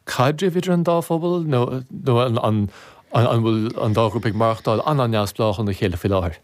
caidrimh idir an dá phobal nó an bhfuil an dá ghrúpa ag maireachtáil an-neamhspleách óna chéile faoi láthair?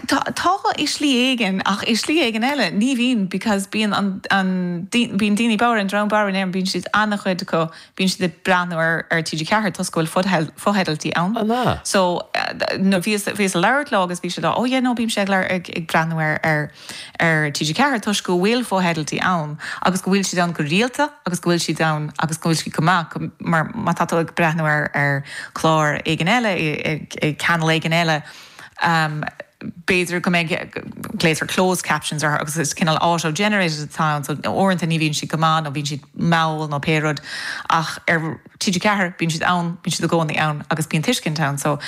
Tá, i slí éigin, ach i slí éigin eile ní bhíonn because bíonn an, an, bíonn daoine bodhar, an dream bodhar in Éirinn, bíonn siad, an-chuid acu, bíonn siad ag breathnú ar, ar TG4 toisc go bhfuil fotheidiltí ann. An ea? So, bhíos, bhíos ag labhairt leo agus bhí siad á, oh yeah no bímse ag labhairt, ag, ag breathnú ar, ar. ar TG4 toisc go bhfuil fotheidiltí ann agus go bhfuil siad ann go rialta agus go bhfuil siad ann agus go bhfuil siad go maith mar má tá tú ag breathnú ar ar clár éigin eile i i channel éigin eile b'fhéidir go mbeidh glaoitear closed captions orthu agus is cineál auto generated atá ann so uaireanta ní bhíonn siad go maith nó bíonn siad mall nó pé rud ach ar TG4, bíonn siad ann, bíonn siad i gcónaí ann agus bíonn tuiscint ann. So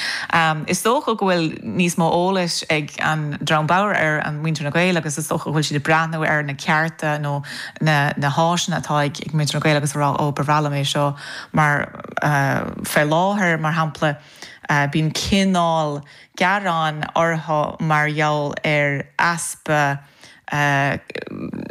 is dócha go bhfuil níos mó eolais ag an dream bodhar ar an muintir na Gael agus is dócha go bhfuil siad ag breathnú ar na cearta nó na na háiseanna atá ag ag muintir na Gael agus ag rá ó ba bhreá liom é seo mar fé láthair mar shampla bíonn cineál gearáin orthu mar gheall ar easpa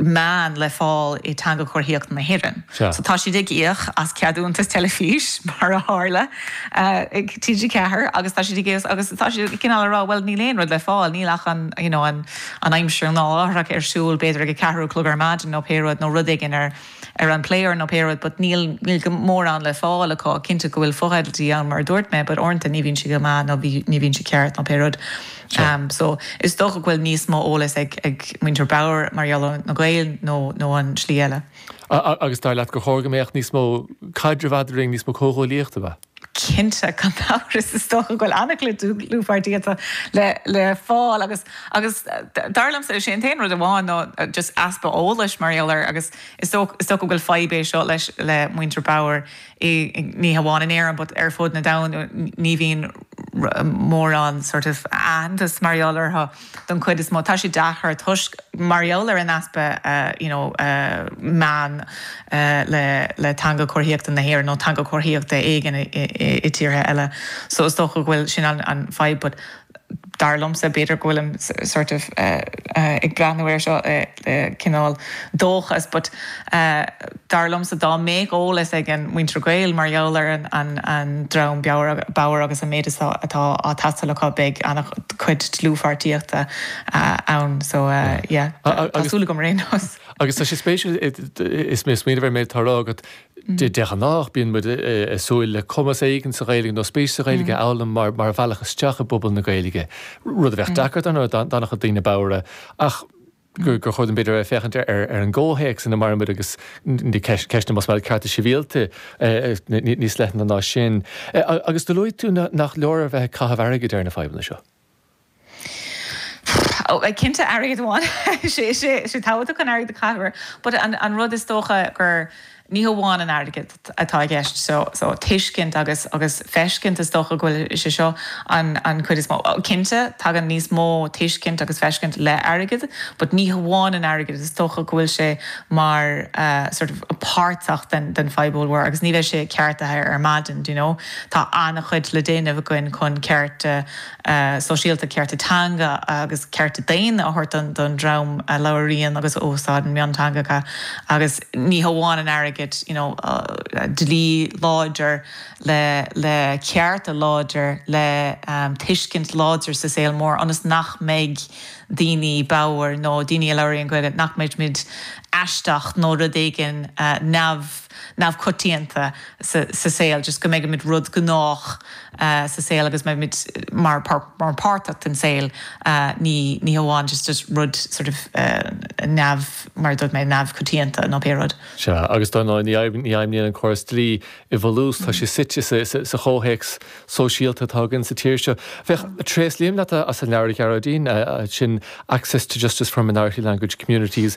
meán le fáil i dTeanga Chomharthaíochta na hÉireann. So tá siad ag íoc as ceadúntas teilifís, mar a tharla, ag TG4 agus tá siad ag íoc agus tá siad cineál ag rá bhuel níl aon rud le fáil, níl ach an you know an aimsir nó láithreach ar siúl b'fhéidir ag a ceathair a chlog ar maidin nó pé rud nó rud éigin ar ar an player nó pé rud but níl níl go mórán le fáil acu ach cinnte go bhfuil fotheidiltí ann mar a dúirt mé but uaireanta ní bhíonn sé go maith nó bhí ní bhíonn sé ceart nó pé rud ehm so is dócha go bhfuil níos mó eolas ag ag muintir bodhar mar gheall ar na Gaeil nó nó an tslí eile. A a agus dar leat gur chóir go mbeadh níos mó caidrimh eadrainn níos mó comhghuaillíochta a bheith. Cinnte, gan amhras, is dócha go bhfuil an-chuid dlúthpháirtíochta le fáil agus agus dar liomsa, is é an t-aon rud amháin ná just easpa eolais mar gheall air agus is dócha go bhfuil fadhb é seo leis le muintir bodhar ní hamháin in Éirinn but ar fud na domhain, ní bhíonn mórán sort of aitheantas mar gheall orthu. den chuid is mó. Tá sé deacair toisc, mar gheall ar an easpa you know meán le Teanga Comharthaíochta na hÉireann nó Teanga Chomharthaíochta éigin i tíortha eile so is dócha go bhfuil sin an fadhb but dar liomsa b'fhéidir go bhfuilim sort of ag breathnú air seo i cineál dóchas but dar liomsa dá mbeadh eolas ag an muintir Gael mar gheall ar an dream bodhar agus an méid atá ag teastáil acu beidh an-chuid dlúthpháirtíochta ann so yeah tá súil agam ar aon nós. Agus tá sé spéisiúil is mé ag smaoineamh ar an méid atá á rá agat, de ghnách bíonn muid ag súil le cumas éigin sa Ghaeilge nó spéis sa Ghaeilge a fhoghlaim mar bhealach isteach i bpobal na Gaeilge, rud a bheadh deacair dar ndóigh, do dhaoine bodhra ach, gur chóir don Bhille a bheith ag féachaint ar an gcomhthéacs ina maireann muid agus ceisteanna mar shampla cearta sibhialta níos leithne ná sin. Agus do luaigh tú nach leor a bheith ag caitheamh airgid ar na fadhbanna seo. Cinnte airgead amháin, sé tabhachtach an airgead a chaitheamh air but an rud is dócha gur. Ní hamháin an airgead atá i gceist, so tuiscint agus agus feiscint is dócha go bhfuil sé seo an an cuid is mó. Cinnte, tagann níos mó tuiscint agus feiscint le airgead, but ní hamháin an airgead, is dócha go bhfuil sé mar sort of páirteach den den fadhb ollmhór agus níl sé ceartaithe ar maidin, do you know. Tá an-chuid le déanamh againn chun cearta. sóisialta, cearta teanga agus cearta daonna a thabhairt don dream a labhraíonn agus a úsáideann mionteangacha agus ní hamháin an airgead, you know dlí láidir le cearta láidir le tuiscint láidir sa saol mór ionas nach mbeidh daoine bodhar nó daoine a labhraíonn Gaeilge nach mbeidh muid aisteach nó rud éigin neamh, neamhchoitianta sa saol, just go mbeimid rud gnách sa saol agus mbeimid mar mar páirteach den saol ní ní hamháin just just rud sort of neamh mar a dúirt mé neamhchoitianta nó pé rud. Sea, agus dar ndóigh, ní ní fheidhmníonn an córas dlí i bhfolús, tá sé suite sa sa sa chomhthéacs sóisialta atá againn sa tír seo. Féach, tréaslaím leat as an leabhar, a Ghearóidín, sin Access to Justice for Minority Language Communities,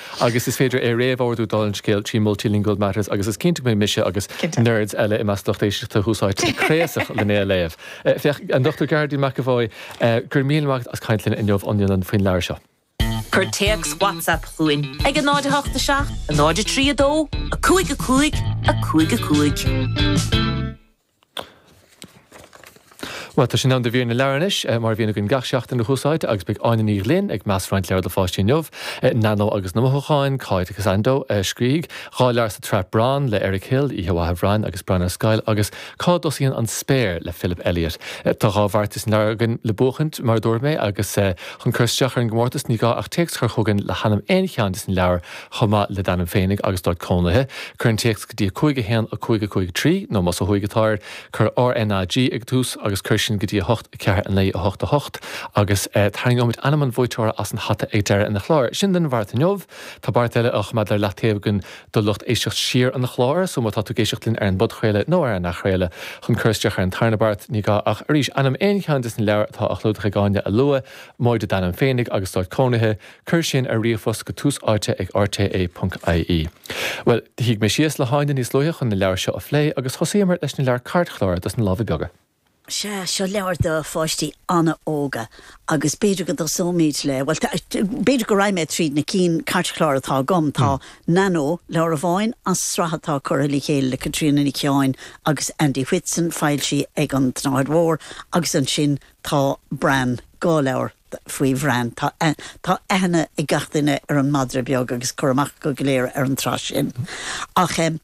agus is féidir é réamhordú dála an scéil trí Multilingual Matters agus is cinnte go mbeidh mise agus nerds eile i measc lucht éisteachta Tús Áite craosach lena léamh. Féach, An Dr Gearóidín McEvoy, Go raibh míle maith agat as caint linn inniu faoin leabhar seo. Cuir téacs WhatsApp chugainn ag 087 032 5555. Bhuel, tá sé in am do mhír na leabhar anois, mar a bhíonn againn gach seachtain ar Tús Áite agus beidh Áine Ní Ghlinn ag meas roinnt leabhar do pháistí inniu, Nanó agus na Mothúcháin, Cá dtéann sé an dtóraíocht dhá leabhar sa tsraith Bran le Eric Hill, Oíche Mhaith a Bhrain agus Bran ar Scoil agus Cá dTosaíonn an Spéir le Philip Elliot. Tá dhá bheartais an leabhar againn le buachaint, mar a dúirt mé, agus chun cur isteach ar an gcomórtas ní gá ach téacs a chur chugainn le hainm aon cheann des na leabhair chomh maith le d'ainm féinig agus d'áit cónaithe, cuir an téacs go dtí 5 1 5 5 3 nó, más ó thuaidh atáir, cuir RNAG ag tús agus cuir sin go dtí 8 4 9 8 8 agus tarraingeoimid ainm an bhuaiteora as an hata ag deireadh an chláir. Sin don bheart inniu. Tá beart eile á choimeád ar leath taobh againn do lucht éisteacht siar an chláir, so má tá tú ag éisteacht linn ar an bpodchraoladh nó ar an athchraoladh, chun cur isteach ar an tarna beart, ní gá ach, arís, ainm aon cheann des na leabhair atá á gclúdach ag Áine a lua, móide d'ainm féinig agus d'áit cónaithe, Cuir sin ar ríomhphost go Tús Áite ag RTÉ.ie. Bhuel, shuigh mé síos le hÁine níos luaithe chun na leabhair seo a phlé agus thosaíomar leis na leabhair cairtchláir dos na lámha beaga. Sea, seo leabhair do pháistí an-óga agus b'fhéidir go dtosóimid le, bhuel, b'fhéidir go rachaidh mé tríd na cinn cairtchláir atá agam. Tá Nanó, leabhar amháin as sraith atá curtha le chéile le Caitríona Nic Sheáin agus Andy Whitson, foilsithe ag an tSnáthaid Mhór, agus ansin tá Bran, dhá leabhar, faoi Bhran. Tá aithne ag gach duine ar an madra beag agus cur amach acu go léir ar an tsraith sin. Ach ag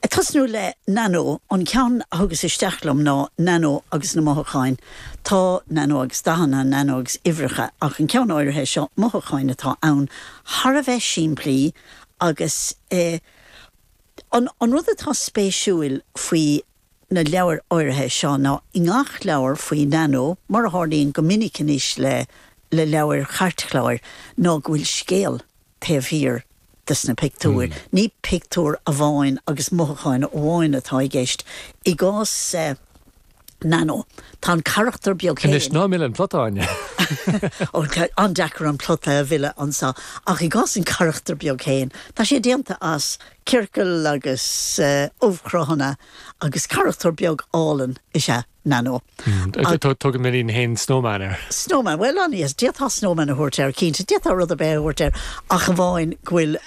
tosnú le Nanó, an ceann a thugas isteach liom ná Nanó agus na Mothúcháin. Tá Nanó agus dathanna, Nanó agus uimhreacha, ach an ceann áirithe seo, Mothúcháin atá ann, thar a bheith simplí agus an rud atá spéisiúil faoi na leabhair áirithe seo ná i ngach leabhar faoi Nanó, mar a tharlaíonn go minic anois le le leabhair chairtchláir, ná go bhfuil scéal taobh thiar des na pictiúir. Ní pictiúir amháin agus mothúcháin amháin atá i gceist. I gcás Nanó, tá an carachtar beag Anois, ná mill an plota, Áine! Ó, tá an-deacair an plota a mhilleadh anseo. Ach i gcás an charachtair beag féin, tá sé déanta as Ciorcal agus ubhchruthanna agus carachtar beag álainn is ea Nanó. Tugann m'iníon féin Snowman air. Snowman, bhuel, an é? D'fhéadfá Snowman a thabhairt air, cinnte. D'fhéadfá rud ar bith a thabhairt air ach amháin go bhfuil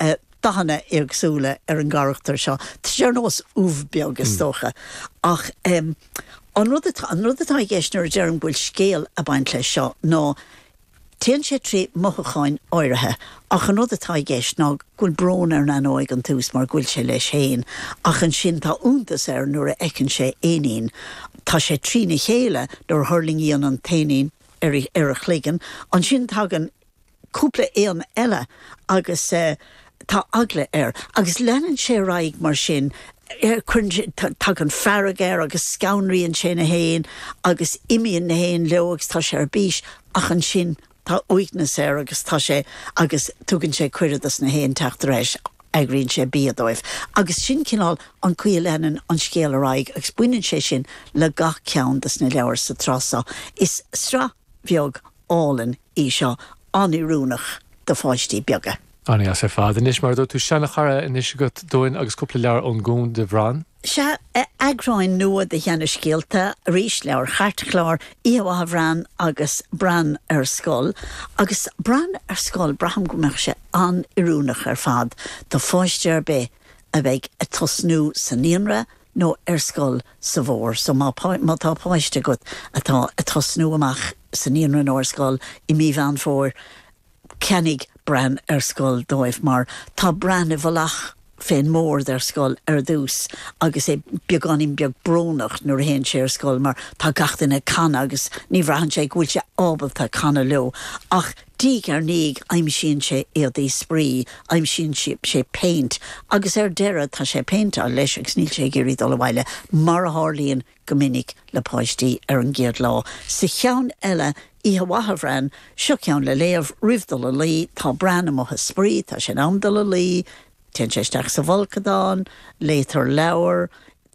dathanna éagsúla ar an gcarachtar seo. Tá sé ar nós ubh beag, is dócha. Ach an rud atá i gceist nuair a deirim go bhfuil scéal ag baint leis seo ná Téann sé trí mhothúcháin áirithe ach an rud atá i gceist ná go bhfuil brón ar Nanó ag an tús mar go bhfuil sé leis féin ach ansin tá iontas air nuair a fheiceann sé éinín. Tá sé trína chéile nuair a thuirlingíonn an t-éinín ar a chloigeann. Ansin tagann cúpla éan eile agus. tá eagla air agus leanann sé ar aghaidh mar sin, cuireann sé, tagann fearg air agus scanraíonn sé na héin agus imíonn na héin leo agus tá sé ar bís ach ansin tá uaigneas air agus tá sé, agus tugann sé cuireadh dos na héin teacht ar ais, eagraíonn sé bia dóibh agus sin cineál an chaoi a leanann an scéal ar aghaidh agus baineann sé sin le gach ceann dos na leabhair sa tsraith seo. Is sraith bheag álainn í seo, an-oiriúnach do pháistí beaga. An-deas ar fad anois, mar a dúirt tú. Seanchara anois agat dúinn agus cúpla leabhar ón nGúm de Bhran. Sea, eagráin nua de sheanscéalta, arís, leabhair chairtchláir, Oíche Mhaith, a Bhran agus Bran ar Scoil. Agus Bran ar Scoil, braithim go mbeadh sé an-oiriúnach ar fad do pháiste ar bith a bheidh ag tosnú sa naíonra nó ar scoil sa bhfómhar. So má tá páiste agat atá ag tosnú amach sa naíonra nó ar scoil i mí Mheán Fómhair, ceannaigh Bran ar Scoil dóibh mar tá Bran i bhfolach fén mbord ar scoil ar dtús agus é beagáinín beag brónach nuair a théann sé ar scoil mar tá gach duine ag canadh agus ní bhraitheann sé go bhfuil sé ábalta canadh leo ach diaidh ar ndiaidh aimsíonn sé éadaí spraoi, aimsíonn sé péint agus ar deireadh tá sé ag péinteáil leis agus níl sé ag iarraidh dul abhaile mar a tharlaíonn go minic le páistí ar an gcéad lá. Sa cheann eile, Oíche Mhaith a Bhran, seo ceann le léamh roimh dul a luí, tá Bran amuigh ag spraoi, tá sé in am dul a luí, téann sé isteach sa bhfolcadán, léitear leabhar,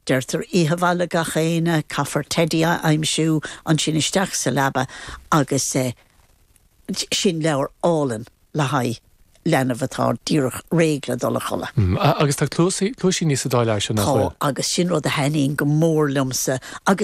deirtear Oíche Mhaith le gach aoinne, caithfear teidí a aimsiú, ansin isteach sa leaba agus. Sin leabhar álainn le haghaidh leanbh atá díreach réidh le dul a chodladh. Agus tá cluaisíní sa dá leabhar sin, nach bhfuil? Tá, agus sin rud a thaitníonn go mór liomsa agus.